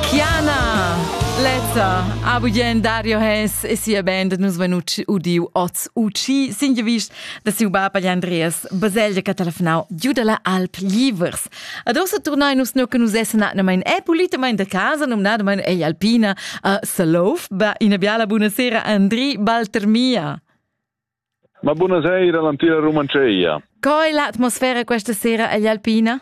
Chiana! Lezza, a bugien Dario Hess e sia band nus venu udiu oz uci sin gevist da siu bab agli Andreas Baselgia che telefonau giu dalla Alp Livers. Ad ossa turnai nus no che nus essen atnamain e pulitamain da casa nomnadamain ei Alpina a Salouf. Ba, ina biala buonasera Andri Baltermia. Ma buonasera all'antica Rumanceia. Coi l'atmosfera questa sera agli Alpina?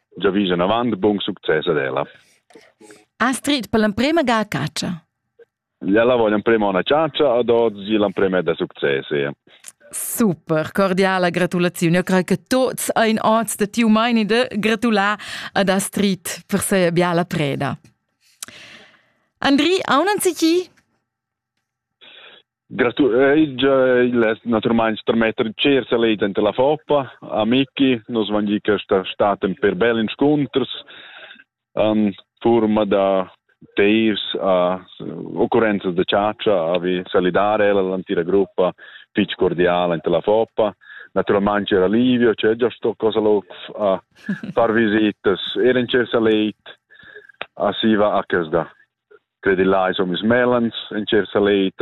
giavis enavant buon succes ad ella. Astrid, per l'emprema ga a caccia. Ella voglia emprema una caccia ad oggi l'emprema è da success. Super, cordiala gratulazione. Io credo che tutti ein oz da tiu maini de gratular ad Astrid per se biala preda. Andri, aunan si chi? Gratuleig, il es naturalmein termetter cer saleit enter la Foppa, a Micki, nos van gi questa staten per bel inscunters, an forma da tears a occurrenzas de ciaccia, a vi salidare ella l'antira gruppa fitch cordiala enter la Foppa, naturalmente era Livio, c'è già sto cosa loc a far visitas, era in cersa leit a Siva a Casda. Credillà ais homis mellans in cher saleit,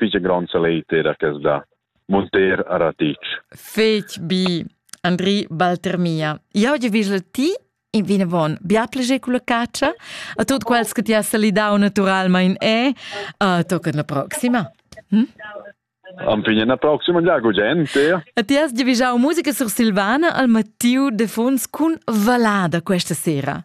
fich grond saleit era que da munter a Ratic. Fetg bi, Andri Baltermia. Jau ti vis ti in vinavon bia pleger con la caccia a tutti quels che ti has salidau naturalmein e uh, tocca la proxima. Hm? Ampigna la proxima già gente. E ti has divigiau musica sursilvana al Mattiu de Fons cun Valada questa sera.